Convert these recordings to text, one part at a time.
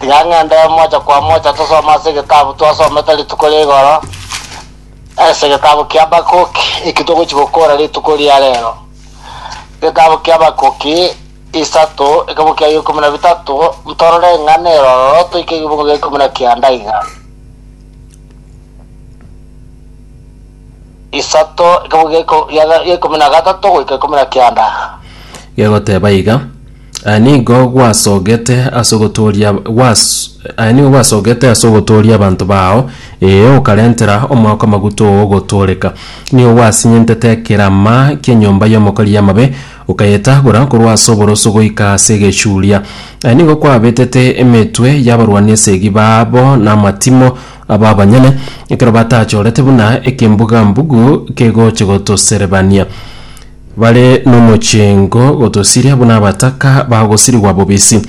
Tiga ng'ende mocha kwa mocha tosome ase egetabu twasomete rituko ria igoro, ase egetabu kia Habakuki, eki togochi gokora rituko ria rero. Egetabu kia Habakuki isato, ekemo kiaye ikomi na bitato, ntorore ng'a neroro toike egebungo gia ikomi na kianda iga. Isato, ekemo gia iko- gia- gia ikomi na gatato goika ikomi na kianda. Gegoteba iga, Aya nigo gwasogete as'ogotooria gwas aya nigo gwasogete as'ogotooria abanto bao, ee, okarentera omwaka amaguta ogotooreka. Nigo gwasinyentete ekerama ki'enyomba y'omokori y'amabe, okayetagora korwa as'oboroso goika as'egechuria. Aya nigo kwabetete emetwe y'abarwani esegi baabo namatimo abo abanyene, ekero batachorete buna ekembuga-mbugu kegoche gotoserebania. Bare nomochengo gotosiria buna abataka bagosirigwa bobisi.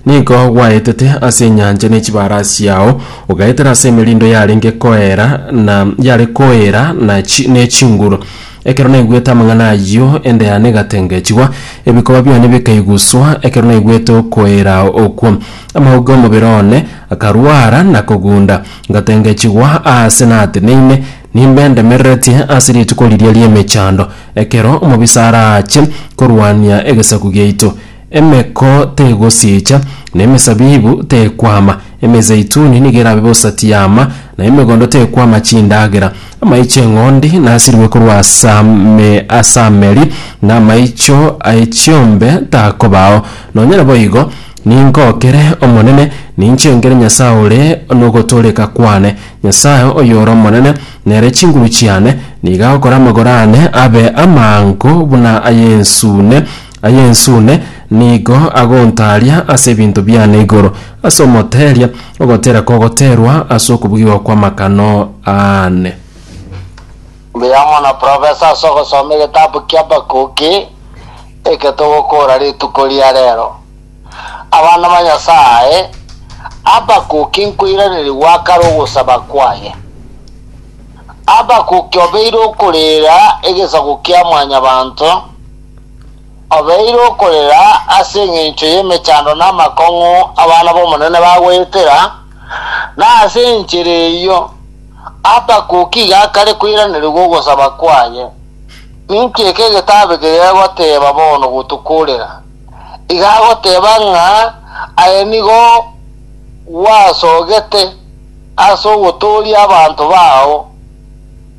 Nigo gwaetete ase enyancha ne chibaara chiao, ogaetera ase emerindo yarenge koera na yare koera na ne chinguru. Ekero naigwete amang'ana ayio, enda yane egatengechigwa, ebikoba biane bikaiguswa ekero naigwete okoera okwo. Amauga omobere one akarwara na kogunda, ngatengechigwa aase nateneine, Nimbe ndemereretie ase rituko riria ri'emechando, ekero omobisa araache korwania egesaku giaito? Emeko tegosiicha, na emesabibu tekwama, emezeituni nigo erabe bosa tiyaama, na emegondo tekwama chindagera. Amaicho 'eng'ondi nasirwe korwa ase ameri, na amaicho aye chiombe takobao. Nonya naboigo, ningookere Omonene, ninchengere Nyasae ore nogotooreka kwane, Nyasae oyore omonene, nere chinguru chiane, nigo agokora amagoro aane abe amaango buna ay'ensune, ay'ensune nigo agontaaria ase ebinto biane igoro ase omoteeria, ogoteera kogoteerwa ase okobugigwa kw'amakano aane. Mbuya mono Professor ase ogosoma egetabu kia Habakuki eke togokoora rituko ria rero. Abana ba Nyasae, Habakuki nkoiranerigwa kare ogosaba kwaye. Habakuki obeire okorera egesaku kia mwanyabanto, obeire okorera ase engencho y'emechando na amakong'u abana b'Omonene bagoetera, na ase enchera eyio Habakuki iga akare koiranerigwa ogosaba kwaye. Ninki eke egetabu eke gegoteeba bono gotokorera? iga agoteba ng'a aye nigo gwasogete ase ogotooria abanto bao,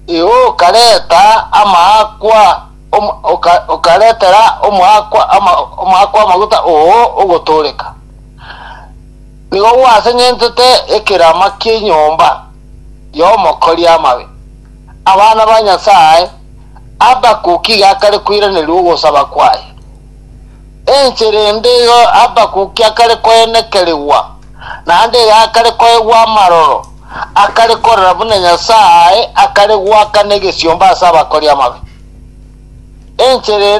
eoka reta amaakwa okaretera omoakwa amaguta oo ogotooreka, nigo gwaseng'entete ekerama ki'enyomba y'omokori amabe. Abana ba Nyasae, Habakuk iga akare koiraneria ogosaba kwaye. Enchera ende eye Habakuki akare koenekerigwa, naende eye akare koegwa amaroro, akare korora buna Nyasae akare goakana egesiomba ase abakori amabe. Enchera ende